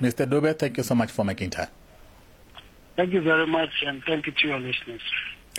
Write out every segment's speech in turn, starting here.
Mr. Dube, thank you so much for making time. Thank you very much, and thank you to your listeners.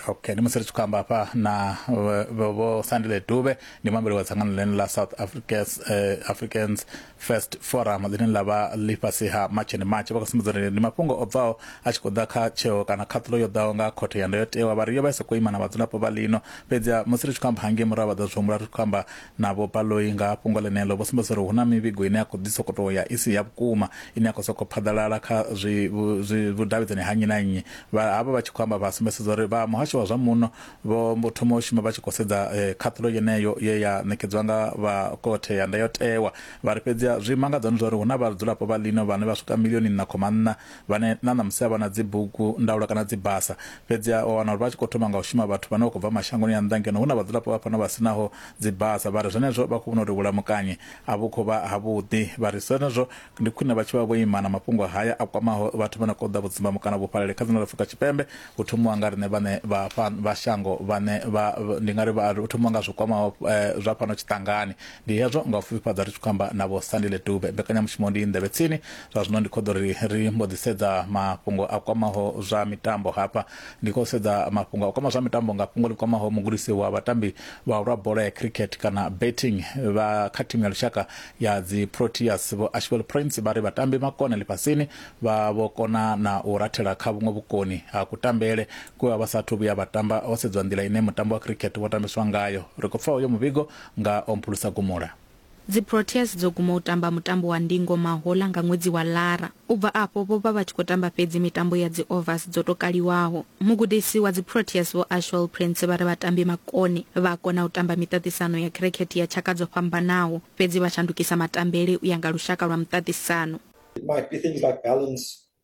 okay ndi musi ri tshi khou amba hafha na vho- vho vho sandile dube ndi muambeli wa dzangano ḽene ḽa south africans, uh, africans first forum ḽine ḽa vha ḽifhasi ha march and march vha khou sumbedza uri ndi mafhungo o bvaho a tshi khou ḓa kha tsheo kana khaṱulo yo ḓaho nga khothe ya ndayotewa vha ri yo vha i sa khou ima na vhadzulapo vha lino fhedzi musi ri tshi khou amba hangei murahu vha ḓo zwi humbula ri tshi khou amba Na Vho Baloyi nga ha fhungo ḽeneḽo vho sumbedzisa uri hu na mivhigo ine ya khou ḓi sokou tou ya i si ya vhukuma ine ya khou sokou phaḓalala kha zwi zwi vhudavhidzani ha nnyi na nnyi. Vha havha vha tshi khou amba vha sumbesedza uri vha muhasho wa zwa muno vho mbo thoma u shuma vha tshi khou sedza khaṱhulo yeneyo ye ya ṋekedzwa nga vha Khothe ya Ndayotewa. Vha ri fhedzi zwi mangadza ndi zwa uri hu na vhadzulapo vha ḽino vhane vha swika milioni nṋa khoma nṋa vhane na ṋamusi a vha na dzibugu ndaulo kana dzibasa. Fhedziha wa wana uri vha tshi khou thoma nga u shuma vhathu vhane vha khou bva mashangoni a nnḓa ngeno hu na vhadzulapo vha fhano vha si naho dzibasa. Vha ri zwenezwo vha khou vhona uri vhulamukanyi a vhu khou vha havhuḓi. Vha ri zwenezwo ndi khwine vha tshi vha vho ima na mafhungo haya a kwamaho vhathu vha no khou ḓa vhudzimbamu kana vhufhalali kha dzina ḽa Afrika Tshipembe, hu thomiwa nga riṋe vhaṋe vha fha, vha shango vhane vha, ndi nga ri vha, hu thomiwa nga zwi kwamaho zwa fhano tshiṱangani. Ndi hezwo nga u fhifhifhadza ri tshi khou amba na Vho Sandile Dube. Mbekanyamushumo ndi Nḓevhe Tsini. zwa zwino ndi khou ḓo ri ri mbo ḓi sedza mafhungo a kwamaho zwa mitambo hafha ndi khou sedza mafhungo a kwama zwa mitambo nga fhungo ḽi kwamaho mugudisi wa vhatambi vha lwa bola ya cricket kana betting vha kha thimu ya lushaka ya dzi proteas vho ashwell prince vha ri vhatambi makone ḽifhasini vha vho kona na u rathela kha vhuṅwe vhukoni ha kutambele kwe vha vha sathu vhuya vha tamba ho sedzwa nḓila ine mutambo wa cricket wo tambiswa ngayo ri khou pfa uyo muvhigo nga omphulusa gumula Dziproteas dzo guma u tamba mutambo wa ndingo mahoḽa nga ṅwedzi wa Lara. U bva afho vho vha vha tshi khou tamba fhedzi mitambo ya dzi-overs dzo tou kaliwaho. Mugudisi wa dziProteas Vho Ashwell Prince vha ri vhatambi makone vha a kona u tamba miṱaṱisano ya khirikhethe ya tshaka dzo fhambanaho, fhedzi vha shandukisa matambele u ya nga lushaka lwa muṱaṱisano. It might be things like balance,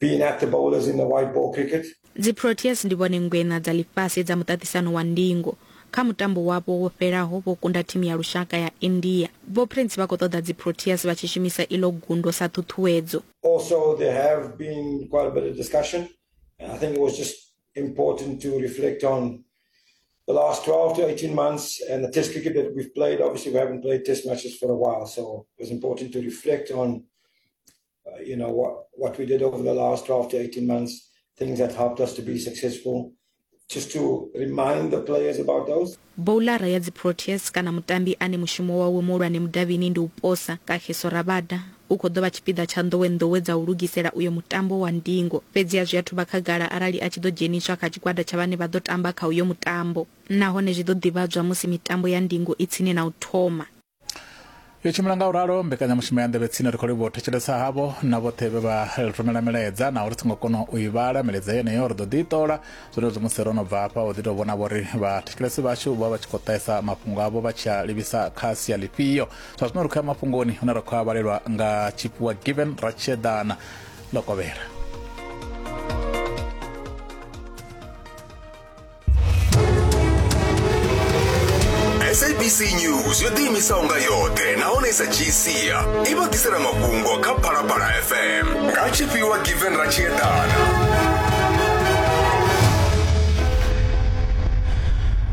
being at the bowlers in the white ball cricket. dziproteas ndi vhone ngweṋa dza ḽifhasi dza muṱaṱisano wa ndingo kha mutambo wavho wo fhelaho vho kunda thimu ya lushaka ya india vho prince vha khou ṱoḓa dziproteas vha tshi shumisa iḽo gundo sa ṱhuṱhuwedzo Also, there have been quite a bit of discussion. I think it was just important to reflect on the last 12 to 18 months and the test cricket that we've played. Obviously, we haven't played test matches for a while, so it was important to reflect on you know, what we did over the last 12 to 18 months, things that helped us to be successful. Just to remind the players about those. boulara ya dziproteas kana mutambi ane mushumo wawe muhulwane mudavhini ndi u posa kagiso rabada u khou ḓo vha tshipiḓa tsha nḓowenḓowe dza u lugisela uyo mutambo wa ndingo fhedziha zwi athu vha khagala arali a tshi ḓo dzheniswa kha tshigwada tsha vhane vha ḓo tamba kha uyo mutambo nahone zwi ḓo ḓivhadzwa musi mitambo ya ndingo i tsini na u thoma yo tshimbila nga u ralo mbekanyamushumo ya nḓevhe tsini ri khou livhuwa u thetshelesa havho na vhoṱhe vhe vha rumela milaedza naho ri songo kona u i vhala milaedza yeneyo ri ḓo ḓi i ṱola zwenezwo musi ro no bva hafha u ḓi tou vhona vho ri vhathetshelesi vhashu vha vha tshi khou ṱahisa mafhungo avho vha tshi a livhisa kha sia ḽifhio zwa zwino ri khou ya mafhungoni hune ra khou a vhalelwa nga tshifhiwa given ra tshiedana ḽo kovhela sabc news yo ḓiimisaho nga yoṱhe nahone i sa dzhii sia i vha ḓisela mafhungo kha phalaphala fm nga tshifhiwa given ratshiedana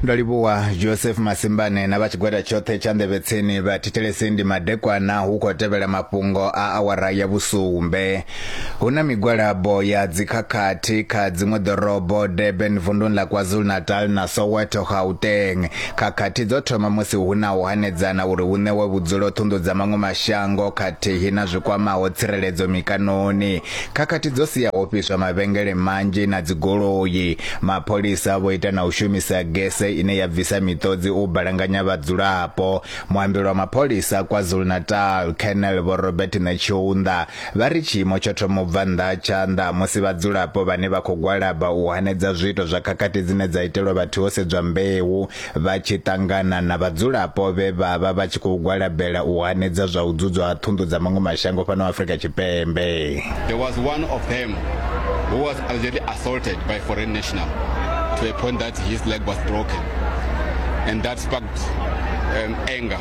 ndo livhuwa joseph masimbane na vha tshigwada tshoṱhe tsha nḓevhetseni vha thithelesi ndi madekwana hu khou tevhela mafhungo a awara ya vhusumbe Hu na migwalabo ya dzikhakhathi kha dziṅwe ḓorobo, Durban, vunḓuni ḽa KwaZulu-Natal na Soweto, Gauteng. Khakhathi dzo thoma musi hu na u hanedzana uri hu ṋewe vhudzulo ṱhunḓu dza maṅwe mashango khathihi na zwi kwamaho tsireledzo mikanoni. Khakhathi dzo sia ho fhiswa mavhengele manzhi na dzigoloi. Mapholisa vho ita na u shumisa gese ine ya bvisa miṱodzi u balanganya vhadzulapo. Muambeli wa mapholisa KwaZulu-Natal, Colonel Vho Robert Netshiunda, Vha ri tshiimo tsho thoma u bva nnḓa ha tshanḓa musi vhadzulapo vhane vha khou gwalaba u hanedza zwiito zwa khakhathi dzine dza itelwa vhathu ho sedzwa mbeu vha tshi ṱangana na vhadzulapo vhe vha vha vha tshi khou gwalabela u hanedza zwa u dzudzwa ha ṱhunḓu dza maṅwe mashango fhano Afrika Tshipembe. There was one of them who was allegedly assaulted by foreign national to a point that his leg was broken and that sparked um, anger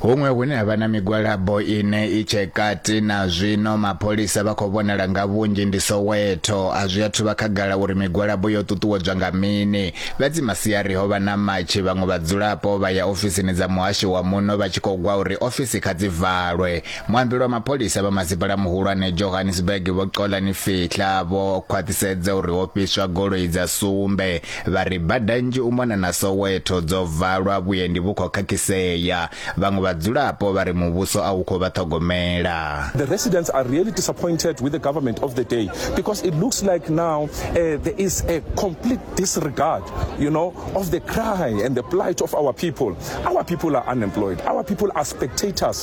Huṅwe hune ha vha na migwalabo ine i tshe kati na zwino mapholisa vha khou vhonala nga vhunzhi ndi Soweto. A zwi athu vha khagala uri migwalabo yo ṱuṱuwedzwa nga mini. Fhedzi masiari ho vha na matshi vhaṅwe vhadzulapo vha ya ofisini dza muhasho wa muno vha tshi khou gwa uri ofisi kha dzi valwe. Muambi lwa mapholisa vha masipala muhulwane Johannesburg Vho Xolani Fihla vho khwaṱhisedza uri ho fhiswa goloi dza sumbe Vha ri bada nnzhi u mona na Soweto dzo valwa, vhuendi vhu khou khakhisea. Vhaṅwe vhadzulapo vha ri muvhuso a u khou vha ṱhogomela. The residents are really disappointed with the government of the day because it looks like now uh, there is a complete disregard you know, of the cry and the plight of our people. Our people are unemployed. Our people are spectators.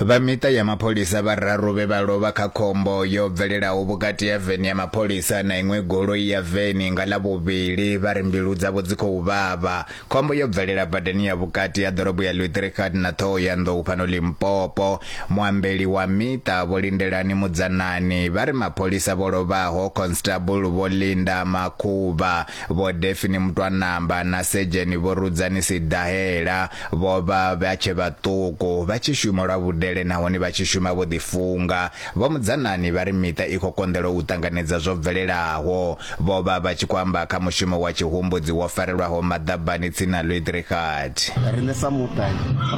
Vha miṱa ya mapholisa vhararu vhe vha lovha kha khombo yo bvelelaho vhukati ha veni ya mapholisa na iṅwe goloi ya veni nga Ḽavhuvhili vha ri mbilu dzavho dzi khou vhavha. Khombo yo bvelela badani ya vhukati ha ḓorobo ya Luthericard na Thohoyandou fhano Limpopo. Muambeli wa miṱa Vho Lindelani Mudzanani vha ri mapholisa vho lovhaho, Constable Vho Linda Makhuvha, Vho Defini Mutwanamba na Sedzheni Vho Rudzani Sidahela vho vha vha tshe vhaṱuku vha tshi shuma lwa vhudele nahone vha tshi shuma vho ḓifunga. Vho Mudzanani vha ri miṱa i khou konḓelwa u ṱanganedza zwo bvelelaho. Vho vha vha tshi khou amba kha mushumo wa tshihumbudzi wo farelwaho maḓabani tsini na Luidrigard. Riṋe sa muṱa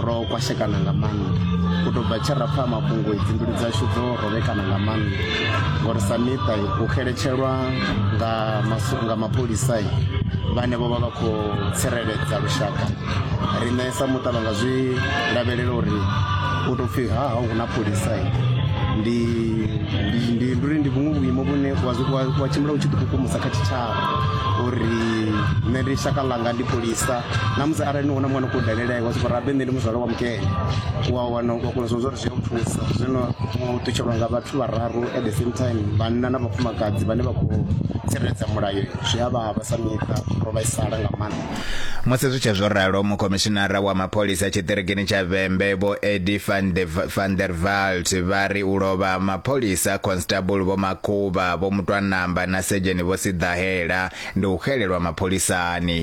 ro kwashekana nga maanḓa. U tou bva tshe ra pfa mafhungo dzimbilu dzashu dzo rovhekana nga maanḓa ngori sa miṱa u xeletshelwa nga nga mapholisa vhane vho vha vha khou tsireledza lushaka riṋe sa muṱa vha nga zwi lavhelela uri u tou pfhi ha ha hu na pholisa ndi ndi ndi uri ndi vhuṅwe vhuimo vhune wa tshimbila u tshi ḓi kukumusa kha tshitshavha uri nṋe ndi shaka ḽanga ndi pholisa na musi arali ni hone mwana khou dalela iwe sokou rabe nṋe ndi muzwala wa mukene wana u kona zwo zwo zwi u thusa zwino u ṱutshelwa nga vhathu vhararu at the same time vhanna na vhafumakadzi vhane vha khou tsireledza mulayo zwi a vhavha sa miṱa ro vhaisala nga maanḓa musi zwi tshe zwo ralo mukhomishinara wa mapholisa tshiṱirikini tsha vhembe vho edi van der valt vha ri u lovha mapholisa constable vho makhuvha vho mutwanamba na sedzheni vho siḓahela ndi u xelelwa mapholisani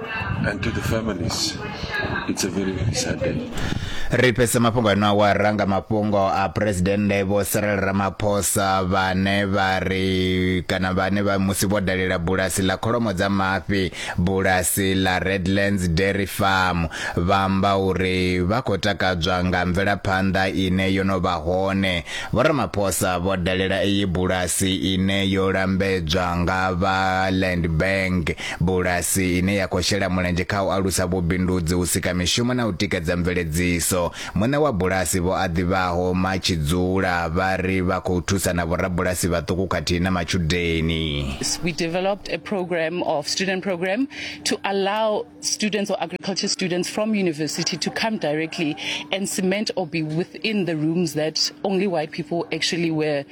and to the families. It's a very sad day. ri fhese mafhungo ano awara nga mafhungo a phuresidennde vho cyril ramaphosa vhane vha ri kana vhane vha musi vho dalela bulasi ḽa kholomo dza mafhi bulasi ḽa redlands dairy farm vha amba uri vha khou takadzwa nga mvelaphanḓa ine yo no vha hone vho ramaphosa vho dalela iyi bulasi ine yo lambedzwa nga vha land bank bulasi ine ya khou shela mulenzhe kha u alusa vhubindudzi, u sika mishumo na u tikedza mveledziso. Muṋe wa bulasi Vho Aḓivhaho Matshidzula vha ri vha khou thusa na vhorabulasi vhaṱuku khathihi na matshudeni. we developed a program of student program to allow students or agriculture students from university to come directly and cement or be within the rooms that only white people actually were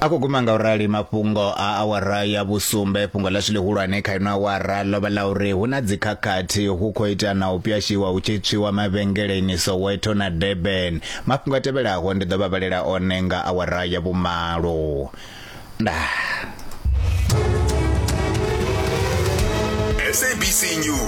a khou guma nga u rali mafhungo a awara ya vhusumbe fhungo ḽashu ḽihulwane kha ino awara ḽo vha ḽa uri hu na dzikhakhathi hu khou ita na u pyashiwa hu tshi tswiwa mavhengeleni soweto na durban mafhungo a tevhelaho ndi ḓo vha vhalela one nga awara ya vhumalo nda sabc news